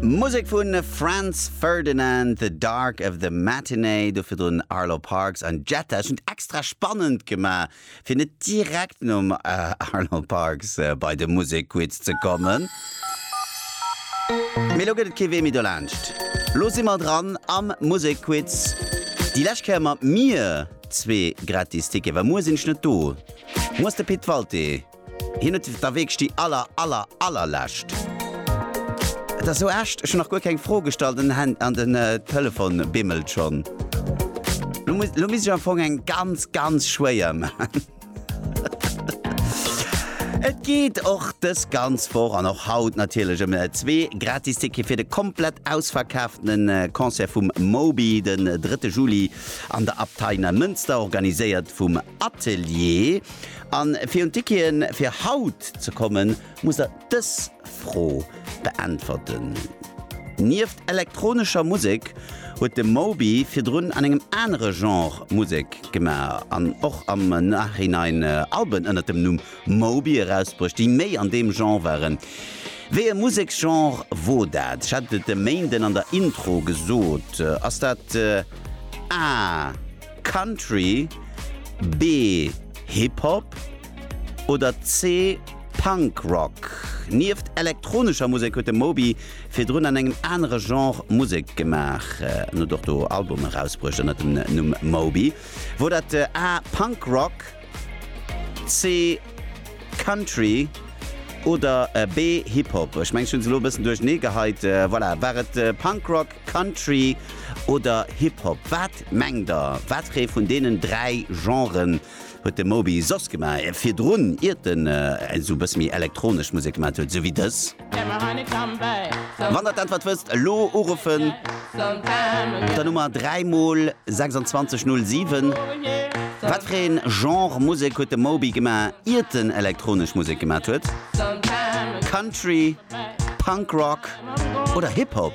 Musek vu Franz Ferdinand, The Dark of the Matinee, do virdrun Arlo Parks an Jetta. Ech hunn et extra spannend gemaach, fir net direkt nom Arlo Parks bei de Musekquiz ze kommen. Mee elo gëtt et kee Wee méi dolaanscht. Lo si mer dran am Musekquiz, déi lescht Kéier mat mir zwee gratis Tickete, well muer sinn ech net do. Muer ass de Pit Walté. Hien huet der wierklech déi aller aller allerlescht. Et ass sou echt, ech hunn nach guer keng Fro gestallt an den Telefon bimmelt schonn. Lo misst ech am Fong eng ganz ganz schwéier maan. Et geet och dës ganz Woch an och haut natierlech ëm zwee gratis Tickete fir de komplett ausverkaafte Concert vum Moby den drëtte Juli an der Abtei Neimënster, organiséiert vum Atelier. An fir un d'Wikien fir haut ze kommen, muss der dës Fro beäntwerten. Nieft elektronescher Musek huet de Moby virdrun an engem anere Genre Musek gemaach an och am Nachhinein Alben ënnert dem Numm Moby erausbruecht, déi méi an deem Genre waren. Wéi e Museksgenre wor dat? Ech hat et e Méinden an der Intro gesot. Ass dat A. Country, B, Hip Hop oder C, Punk Rock? Nieft elektronescher Musek huet de Moby virdrun an engem anere Genre Musek gemaach. En huet och do Albume erausbruecht ënner dem Numm Moby. Wor dat A, Punk Rock, C, Country oder B, Hip Hop? Ech mengen ech hunn se elo e bëssen duerchernee geheit. Voilà, war et Punk Rock? Country oder Hip Hop? Wat mengt der, wateree vun deenen dräi Genren huet de Moby soss gemaach virdrun, iert en esou e bësse méi elektronesch Musek gemaat huet, esou wéi dës? Wann der d'Äntwert wësst, elo uruffen, d'Nummer 3 mol 26 07. Wateree Genre Musek huet de Moby gemaach, iert en elektronesch Musek gemaat huet? Country, Punk Rock oder Hip Hop?